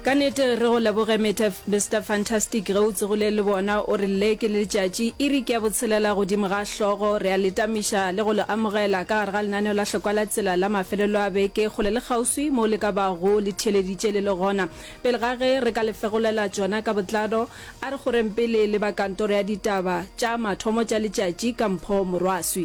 Ka nete re go leboge Mister Fantastic ge o tsogile le bona o re le ke letšatši iri ke ya botshelela godimo ga hlogo re a le tamiša le go le amogela ka gare ga lenaneo la hlokwa la tsela la mafelelo a beke kgole le kgauswi mo le ka bago le theeleditše le le gona pele ga ge re ka le fegolela tšona ka botlalo a re goreng pele le ba kantoro ya ditaba tša mathomo tša letšatši ka mpho morwaswi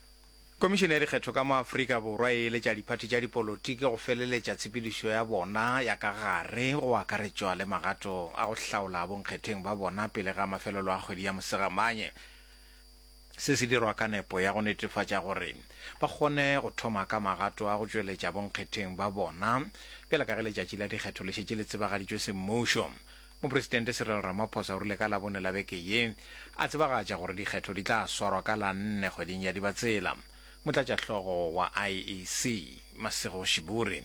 Komišene ya Dikgetho ka mo Afrika Borwa e eletša diphathi tša dipolotiki go feleletša tshepedišo ya bona ya ka gare, go akaretšwa le magato a go hlaola bonkgetheng ba bona pele ga mafelelo a kgwedi ya Mosegamanye. Se se dirwa ka nepo ya go netefatša gore ba kgone go thoma ka magato a go tšweletša bonkgetheng ba bona bjale ka ge letšatši la dikgetho le šetše le tsebagaditšwe semmušo. Mopresidente Cyril Ramaphosa o rile ka Labone la beke ye a tsebagatša gore dikgetho di tla swarwa ka la nne kgweding ya Dibatsela. Motlatšahlogo wa IEC, Masego Shiburi,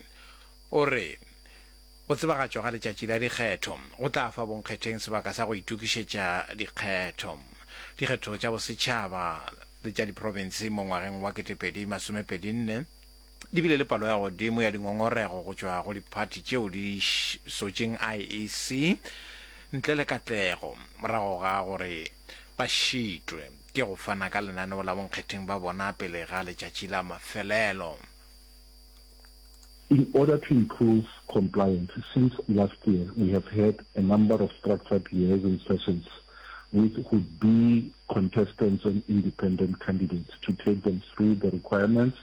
o re go tsebagatšwa ga letšatši la dikgetho go tla fa bonkgetheng sebaka sa go itokišetša dikgetho dikgetho tša bosetšhaba le tša diprofense mo ngwageng wa ketepedi masomepedi nne. Di bile le palo ya godimo ya dingongorego go tšwa go diphathi tšeo di sotšeng IEC ntle le katlego morago ga gore ba šitwe ke go fana ka lenaneo la bonkgetheng ba bona pele ga letšatši la mafelelo. In order to improve compliance, since last year we have had a number of structured liaison sessions with would-be contestants and independent candidates to take them through the requirements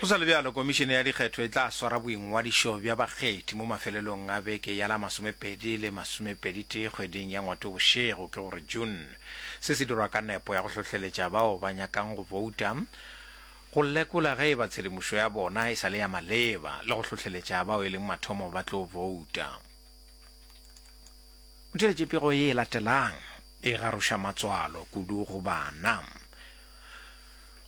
Go sa le bjalo, Komišene ya Dikgetho e tla swara boingwadišo bja bakgethi mo mafelelong a beke ya la masomepedi le masomepeditee kgweding ya Ngwatobošego, ke go re June. Se se dirwa ka nepo ya go hlohleletša bao ba nyakang go bouta go lekola ge e ba tshedimošo ya bona e sa le ya maleba le go hlohleletša bao e leng mathomo ba tlo bouta. O theetše pego ye e latelang e garoša matswalo kudu go bana.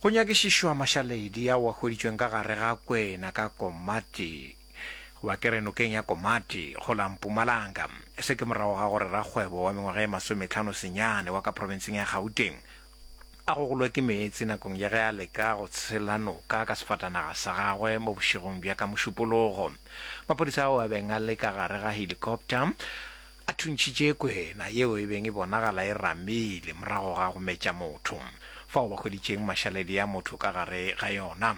Go nyakišišwa mašaledi ao a hweditšweng ka gare ga Kwena ka Komati, goba ke re nokeng ya Komati, go la Mpumalanga. Se ke morago ga gore rakgwebo wa mengwaga e masometlhano senyane wa ka profenseng ya Gauteng a gogolwe ke meetse nakong ya ge a leka go tshela noka ka sefatanaga sa gagwe mo bošegong bja ka Mošupologo. Maphodisa ao a beng a le ka gare ga helikopta, A thuntšhitše kwena yeo e beng e bonagala e ramile morago ga go metša motho, fao ba hweditšeng mašaledi a motho ka gare ga yona.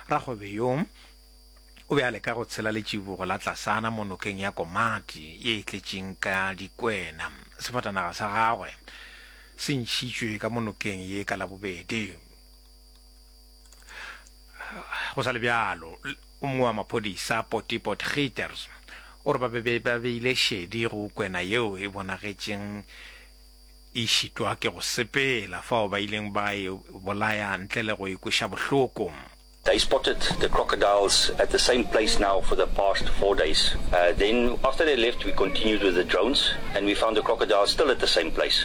Rakgwebe yo o be a leka go tshela letšibogo la tlasana mo nokeng ya Komati ye e tletšeng ka dikwena. Sefatanaga sa gagwe se ntšhitšwe ka mo nokeng ye ka Labobedi. Go sa le bjalo, o mongwe wa maphodisa Potty Potgieterz o re ba be ba beile šedi go kwena yeo e bonagetšeng e šitwa ke go sepela fao ba ileng ba e bolaya ntle le go e kweša bohloko. They spotted the crocodiles at the same place now for the past four days. Then after they left we continued with the drones and we found the crocodiles still at the same place.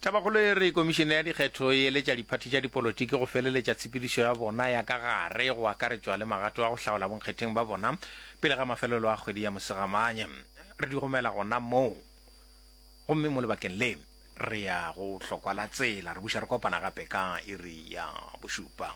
Tabakgolo e re Komišene ya Dikgetho e eletša diphathi tša dipolotiki go feleletša tshepedišo ya bona ya ka gare go akaretšwa le magato a go hlaola bonkgetheng ba bona pele ga mafelelo a kgwedi ya Mosegamane. Re di romela gona moo gomme mo lebakeng le re ya go hlokwa la tsela. Re buša re kopana gape ka iri ya bošupa.